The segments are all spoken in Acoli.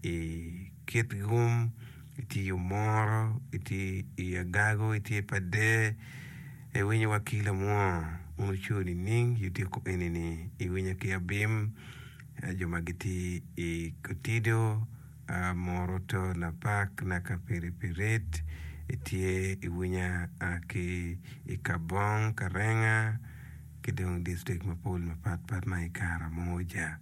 i kit gum, itye i omoro, itye i agago, itye pa der, iwinyo wa ki lamwoo ma oco nining i otyeko eni-ni? Iwinya ki abim, jo ma gitye i kotido, moro to lapak naka piri pi rit, itye iwinya ki i kabong, karenga ki dong distrik mapol mapatpat ma i Karamoja.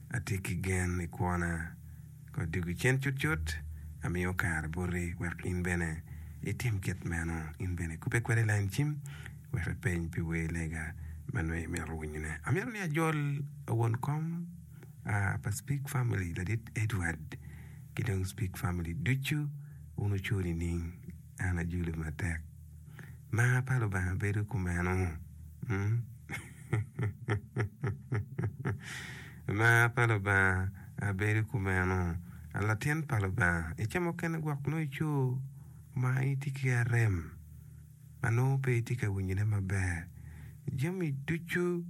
Atye ki gen i kwona. Ka dwogi cen cutcut, amiyo kare boti wek in bene itim kit meno. In bene ikubbe kweda i lain cim wek ipeny pi wer lega ma nongo imito winyone. Amito ni ajol won kom pa Speak Family, Ladit Edward, ki dong Speak Family ducu wun oco nining? an ajuli matek. Mar pa Lubanga bedo kumeno? Mar pa Lubanga bedo kumeno? A Latin pa Lubanga, i kema mukene gwok nongo ico ma itye ki arem ma nongo pe itye ka winyone maber. Jami ducu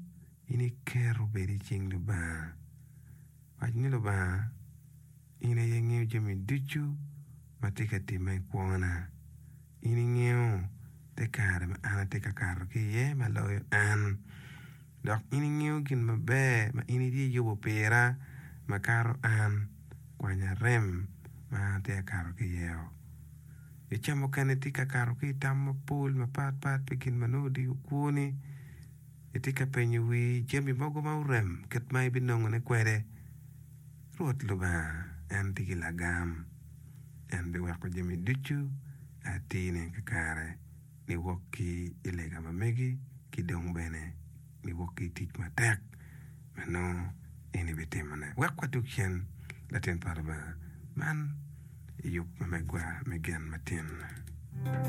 in iketo bedo i cing Lubanga. Wac ni Lubanga. In aye ingeyo jami ducu ma tye ka timme i kwona. In ingeyo te kare ma an atye ka kato ki iye ma loyo an, dok in ingeyo gin maber ma in itye yubo pira makato an. Kwanya rem ma an atye ka kato ki iye-o. I ca mukene itye ka kato ki i tam mapol mapatpat pi gin ma nongo odiko kwoni. Itye ka penyo wii jami mogo ma orem kit ma ibinongone kwede. Rwot Lubanga en tye ki lagam, en biweko jami ducu a tine kakare niwok ki i lega ma megi ki dong bene niwok ki i tic matek ma nongo en ibitimone. Wek wadog cen, latin pa Lubanga, man yub ma megwa me gen matin.